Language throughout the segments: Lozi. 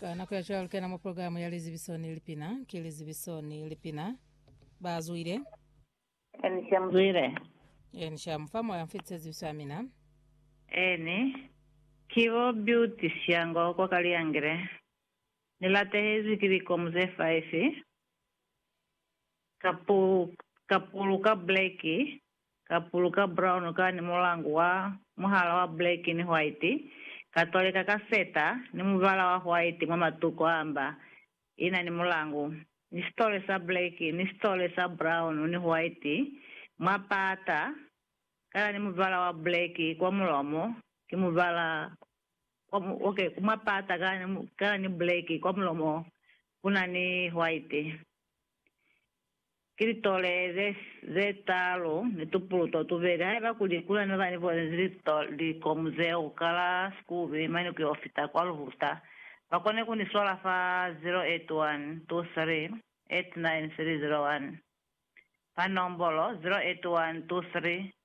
Ka nako ya cwalo kena mo programu ya lizibiso ni lipina ki lizibiso ni lipina ba zwile Eni sha mzwile. eni sha mufa moya mfitise zibiso ya mina Eni. Kibo Beauty Shango kwa Kaliangile. Ni latehezwi ki likomu ze 5. Ka pulu, ka pulu ka black Ka puluka brown ka ni mulangu wa muhala wa black ni white, ka toleka ka feta ni mubala wa white mwa matuko a mba i na ni mulangu, ni sitole sa black ni sitole sa brown ni white mwa pata, ka na ni mubala wa black kwa mulomo, ki mubala wa, ok, mwa pata ka na ni black kwa mulomo ku na ni white. Ki litolele ze talu ni tupuluto tubeli. Haiba kuli kule ne ba ni bonezi likomu zeo ka la sikube, mane ku yo fita kwa luhuta, ba kone ku ni swala fa 0812389301, fa nombolo 0812389301.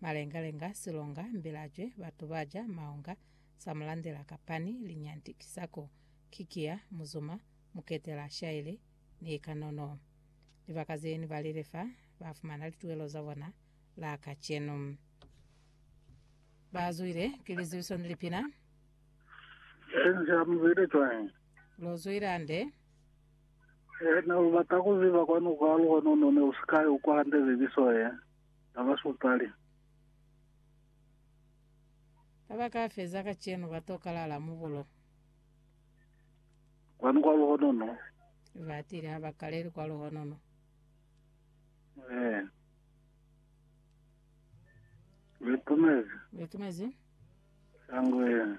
Malengalenga, silonga, mbilacwe, batu ba ja maunga, samulandela, kapani, linyanti, kisako, kikiya, muzuma, muketela, shaili, ni kanono. Libaka ze ni balile fa ba fumana lituelo za bona la kacenu. Ba zwile ki lizibiso ni lipina. Sense a mu zwile cwañi? Lo zwile hande. He ne u bata ku ziba kwani kwa lukwa nono ne u si ka i ukwa hande zibiso ye. Na ba supali. Ka ba ka feza kacenu ba to kalala mu bulo. Kwani kwa luhonono. Ba tile ha ba kaleli kwa luhonono. Eh. Betumezi. Betumezi. Sangwe.